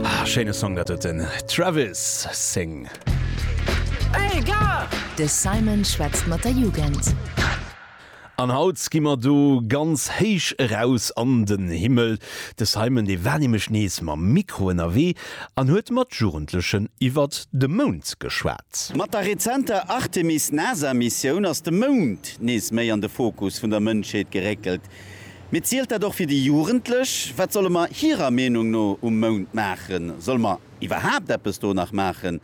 Ah schéine Song, dat huet den Travis seng. De Simon schwätzt mat der Jugend. An haut gi mer do ganz héich eraus an den Himmel. De Simon dee war nämlech nees mam Mikro ënnerwee an huet mat Jugendlechen iwwert de Mound geschwat. Mat der rezenter Artemis-NASA-Missioun ass de Mound nees méi an de Fokus vun der Mënschheet geréckelt. Mee zielt dat och fir déi Jugendlech? Wat solle mer hirer Meenung no um Mound maachen? Solle mer iwwerhaapt eppes do nach maachen?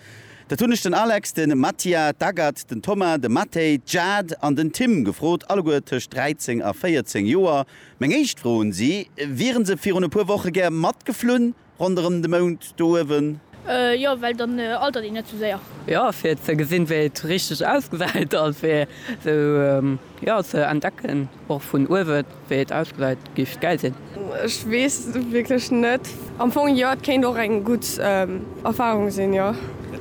Dat hunn ech den Alex, de Mattia, d'Agathe, den Thomas, de Mathey, d'Jade an den Tim gefrot, alleguer tëscht 13 a 14 Joer. Meng éischt Fro un si, Wieren se virun e puer Woche gär matgeflunn? Ronderëm de Mound do uewen. Jo, well dann altert een net sou séier. Jo, fir ze gesinn, wéi et richteg ausgesäit a fir sou ze entdecken och vun uewen, wéi et ausgesäit. Géif gäil sinn. Ech weess wierklech net. Am Fong jo, et kéint och eng gutt Erfarung sinn, jo.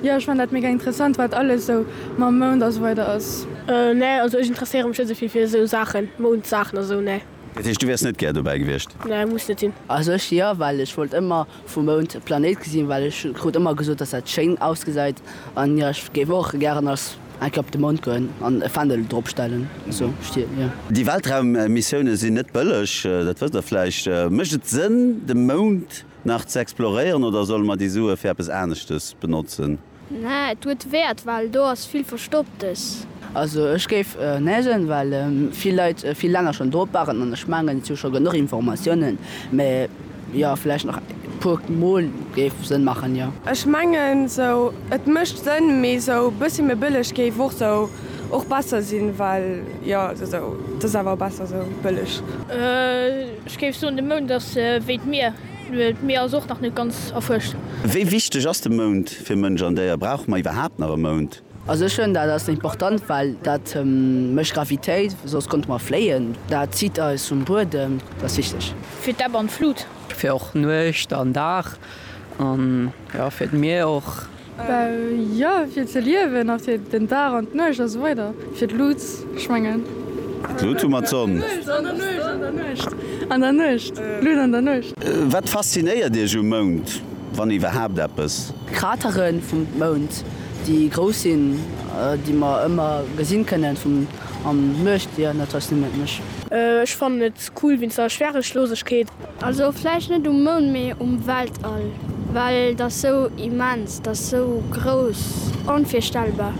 Jo, ech fannen dat mega interessant, wat alles sou mam Mound a sou weider ass. Nee, also ech interesséiere mech net sou vill fir sou Saachen, Moundsaachen a sou, nee. Dat heescht du wärs net gär dobäi gewiescht? Nee muss net sinn. Also ech jo, well ech wollt ëmmer vum Mound e Planéit gesinn, well ech krut ëmmer gesot dass dat schéin ausgesäit, an jo ech géif och gären als eng Kéier op de Mound goen an e Fändel drop stellen sou stien jo. Déi Weltraummissioune sinn net bëlleg, dat wësst der vläicht. Mécht et Sënn de Mound nach ze exploréieren oder solle mer déi Sue fir eppes aneschtes benotzen? Nä, et huet Wäert, well do ass vill Verstopptes. Also ech géif Nä soen, well vill Leit vill länger schonn drop waren an ech mengen et si scho genuch Informatiounen. Mä jo, vläicht nach e puer Mol géif Sënn maachen, jo. Ech mengen esou, et mécht Sënn, mee esou e bëssi méi bëlleg géif och esou och besser sinn, well jo esou, et ass awer besser esou bëlleg. Ech géif soen de Mound ass wéi d'Mier. D'Mier ass och nach net ganz erfuerscht. Wéi wichteg ass de Mound fir Mënsch an Déier? Brauche mer iwwerhaapt nach e Mound? Also ech fënn dat ass important, well dat mécht Gravitéit, soss konnte mer fléien. Dat zitt eis vum Buedem, dat ass wichteg. Fir d'Ebb an d'Flut. Fir och Nuecht an Dag an jo fir d'Mier och. Jo, fir ze liewen a fir den Dag an d'Nuecht a sou weider. Fir d'Lut, ech mengen. D'Lut hu mer, d'Sonn. An der Nuecht, an der Nuecht. An der Nuecht, d'Lut an der Nuecht. Wat faszinéiert Iech um Mound, wann iwwerhaapt eppes? D'Kratere vum Mound, déi grouss sinn, déi mer ëmmer gesi kënnen vum an Nuecht. Jo, dat faszinéiert mech. Ech fannen et Cool wéinst der Schwerechloosegkeet. Also vläicht net um Mound, mee um Weltall, well et ass sou immens, et ass sou grouss, onvirstellbar.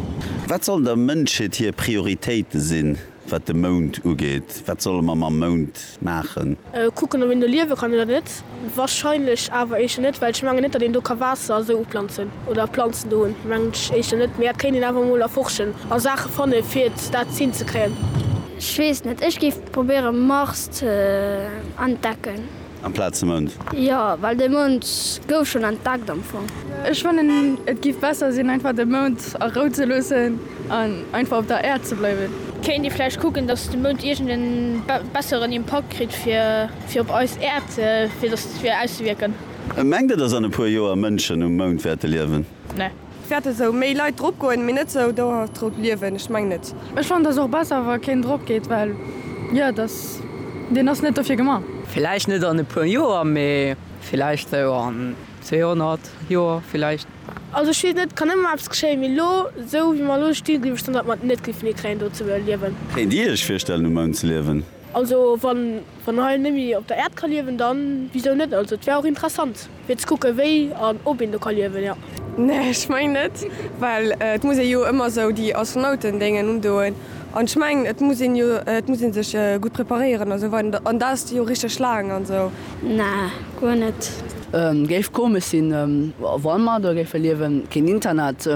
Wat sollen der Mënschheet hir Prioritéite sinn, wat de Mound ugeet? Wat solle mer mam Mound maachen? Kucken, ob een do liewe kann oder net. Warscheinlech awer éischter net, well ech mengen net, datt een do ka Waasser esou uplanzen oder Planzen do hunn, mengen ech éischter net. Mee dat kéint een awer emol erforschen a Saache fanne fir et dat hinzekréien. Ech weess net, ech géif Probéiere Mars ze entdecken. Amplaz de Mound? Jo, well de Mound gouf schonn entdeckt am Fong. Ech fannen et giff besser sinn einfach de Mound a Rou ze loossen an einfach op der Äerd ze bleiwen. Kéint ee vläicht kucken dass de Mound iergend en besseren Impakt kritt fir op eis Äerd fir dass fir auszewiirken. Mengt der dass an e puer Joer Mënschen um Mound wäerte liewen? Nee. Wärt esou méi lait drop goen mee net sou dauerhaft drop liewen, ech meng net. Ech fannen dass och besser wa keen drop geet well jo dass deen ass net dofir gema. Villäicht net an e puer Joer mee villäicht sou an 200 Joer villäicht. Also ech wees net, kann ëmmer eppes geschéien, mee lo sou wéi mer lo stinn gleef ech dann dat mer et net geifen hie kréien do ze liewen. Kéint dir iech virstellen um Mound ze liewen? Also wann wann hei net méi op der Äerd ka liewen dann wisou net, also et wär och interessant. Fir ze kucken wéi an ob een do ka liewen, jo. Nee ech meng net, well et muss ee jo ëmmer sou déi Astronautendéngen undoen an ech meng et muss een jo, et muss een sech gutt preparéieren a sou weider an dat ass jo richteg laang an sou. Nee guer net. Géif komesch sinn wann mer do géife liewen, keen Internet,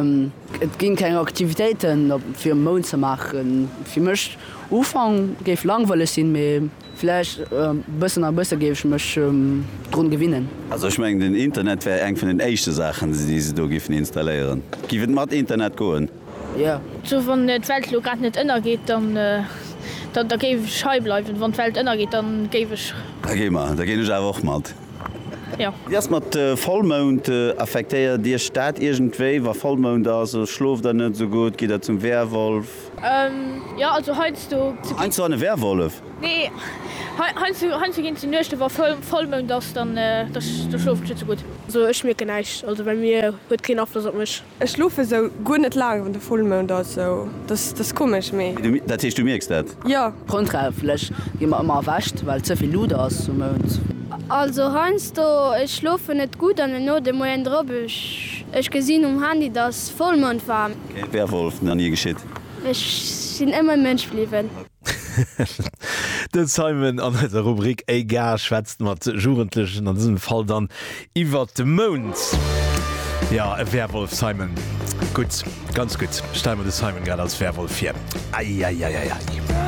et ginn keng Aktivitéiten op fir um Mound ze maachen. Fir mech Ufank géif langweileg sinn mee. Vläicht bëssen a bësse géif ech mech drun gewinnen. Also ech mengen den Internet wär eng vun den éischte Saachen déi se do giffen installéieren. Giff et mat Internet goen? Jo. Sou wann d'Welt elo grad net ënnergeet dann da géif ech hei bleiwen. Wann d'Welt ënnergeet dann géif ech. Da gi mer, da ginn ech awer och mat. Jo. Wéi ass mat Vollmound? Affektéiert iech dat iergendwéi? Wa Vollmound ass, schloft der net esou gutt? Gitt der zum Werwolf? Jo, also heiansdo ginn. Heiansdo an e Werwolf? Nee, heiansdo ginn se Nuechten, wa Vollmound ass, dann schlofen ech net sou gutt. Also ech mierken näischt, also bei mir huet keen Afloss op mech. Ech schlofe sou guer net laang wann de Vollmound ass, sou dass dass komesch, mee. Dat heescht du mierks dat? Jo. Grondrechtlich gi mer ëmmer erwächt, well ze vill Luut ass um Mound. Also heiansdo, ech schlofen net gutt an den Otem huelen drop, ech gesinn um Handy dass Vollmound war. Kee Werwolf, na nie geschitt. Ech sin ëmmer Mënsch bliwwen. De Simon an eiser Rubrik Ey Gars schwätzt mat Jugendlechen, an dësem Fall dann iwwert de Mound. Jo, e Werwolf, Simon. Gutt, ganz gutt. Stelle mer de Simon grad als Werwolf vir. Eieieiei.